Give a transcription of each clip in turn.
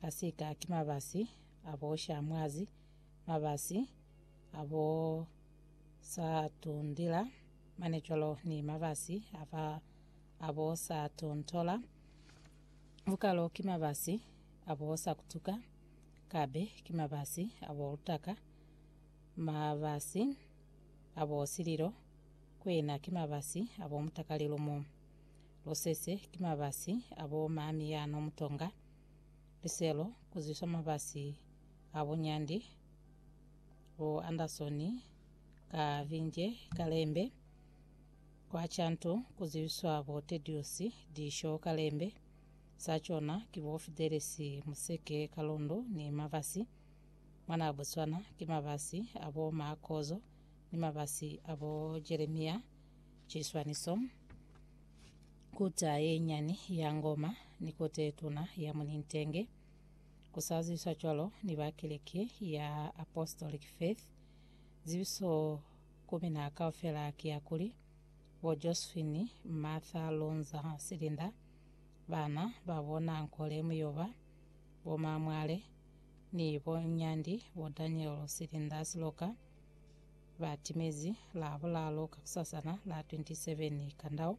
Pasika ki mabasi a bo sha mwazi, mabasi a bo sa tundila mane cwalo ni mabasi a fa a bo sa tontola. Vukalo ki mabasi a bo sa kutuka, kabe ki mabasi a bo lutaka, mabasi a bo sililo, kwena ki mabasi a bo mutakalilumu. Lusese ki mabasi a bo mami ya no mutonga, liselo ku zwiswa mabasi a buñandi bo Anderson ka Vinje ka lembe, kwa Chanto ku zwiswa bo Tedious Disho ka lembe, sa cona ki bo Fidelis Museke ka londo ni mabasi mwa na Botswana ki mabasi a bo Ma Kozo ni mabasi a bo Jeremia Chiswaniso. Kota ye nyani ya ngoma ni kota ye tuna ya munintenge, ku sa zibiswa cwalo ni ba Keleke ya Apostolic Faith. Zibiso ku mina kaufela ki ya kuli, bo Josephine Martha Lonza Silinda, bana ba bo Nankole Muyoba, bo Mamwale, ni bo Nyandi bo Daniel Silinda Siloka, ba timezi Labulalo kakusasana la 27 Kandau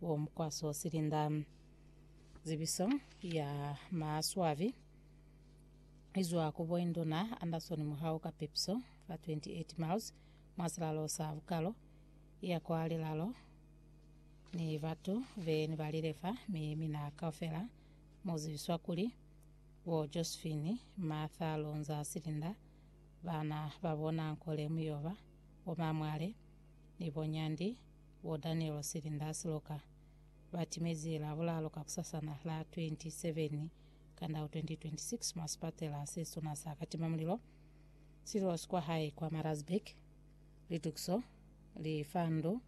Wo mukwaso silinda zibiso ya maswabi izwa ku boinduna Anderson Muhau ka Pipso fa 28 miles mwa silalo sa Bukalo iya kwa lilalo ni batu be ni balile fa mi mina kaufela mu zibiswa kuli bo Josephine Martha Lonza Silinda bana ba bona Nkole Muyoba bo Mamwale ni bo Nyandi Bo Daniel Silinda Siloka ba timezi Labulalo kakusasana la 27 Kandau 2026 mwa sipatela se suna sa katima mulilo Silos kwa hae kwa Marazburg. Litukiso li fa ndu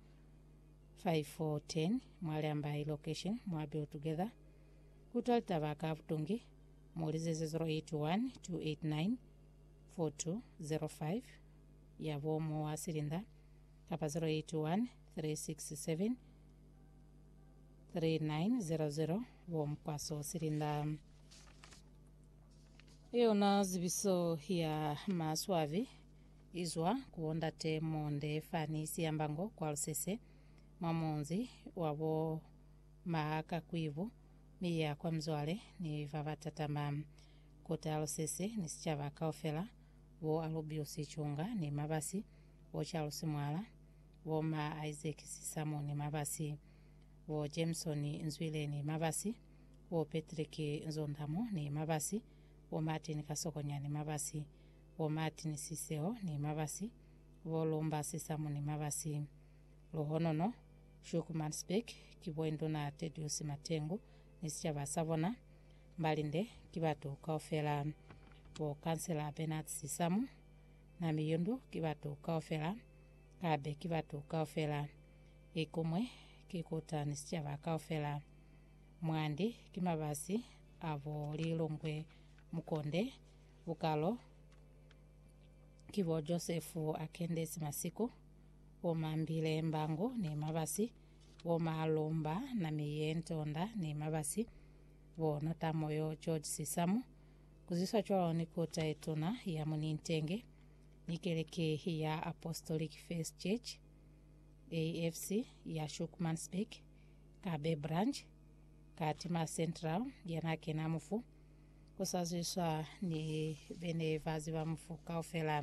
510 mwa Leambai location mwa Build Together. Kutwa litaba ka butungi, mu lizeze 081 289 4205 ya bo Mowa Silinda. kapa 081 367 3900 bo Mkwaso Silinda. Yona zibiso ya maswabi izwa ku bondate Monde fani Siyambango kwa Lusese mwa munzi wabo Mahakakwibu mi ya kwa Mzwale ni babatatama kota Lusese ni sicaba kaufela bo Alubiusi Chunga ni Mabasi bo Charles Mwala, bo ma Isaac Sisamoni Mabasi, bo Jameson Nzwileni Mabasi, bo Patrick Nzondamo ni Mabasi, bo Martin Kasokonyani Mabasi, bo Martin Siseho ni Mabasi, bo Lumba Sisamo ni Mabasi. Luhonono, Schoeckmansberg, ki bo Induna Tedius Matengu ni sicaba sa bona. Mbalinde, ki batu kaufela. Bo Kansela Bernard Sisamo, Na miyundu ki batu kaufela, kabe ki batu kaufela. Ikumwe ki kuta ni sicaba kaufela. Mwandi ki mabasi abo lilongwe mukonde, bukalo ki bo Josefu akendesi masiku, bo mambile mbango ni mabasi, bo malomba nami ye ntonda ni mabasi, bo notamoyo George Sisamu, Ku zwiswa cwalo ni kota ye tuna ya mu Nintenge ni keleke ya Apostolic Faith Church, AFC, ya Schoeckmansbeek, ka Bay Branch, ka Timor Central ya n'a kena mufu, ku sa zwiswa ni be ne ba ziba mufu kaufela.